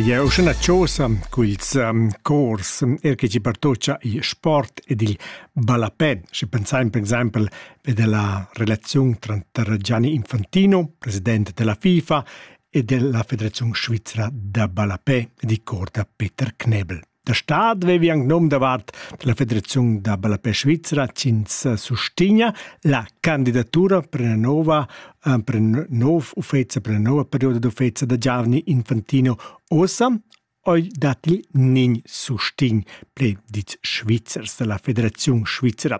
Jeu sun a chosa cun ils cors, er che ti partocha il sport ed il ballapè. Sche pensain per exaimpel be dalla relaziun tranter Gianni Infantino, president della FIFA, e della Federaziun svizra da ballapè ed il cor da Peter Knebel. Da stad vevi anc nom davart la Federaziun da ballapè svizra ch'ins sustegna la candidatura per una nova, eh, per un nov uffezia, per una nova perioda d'uffezia da giovani infantino ossa oi dat il nin sustin, ple dits Schweizers dalla Federaziun Svizra.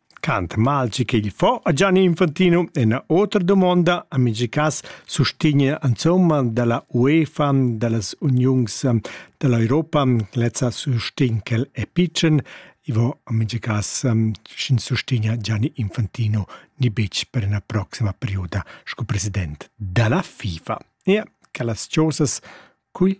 Cant malci ch'igl fo a Gianni Infantino ena otra dumonda a mingi cas sustigna insomma dalla UEFA, dallas uniungs dall'Europa, lezza sustign quel è pitschen, i vo a mingi cas sch'ins sustigna Gianni Infantino ni betg per ena proxima perioda sco president dalla FIFA. Ia, quellas chosas, cui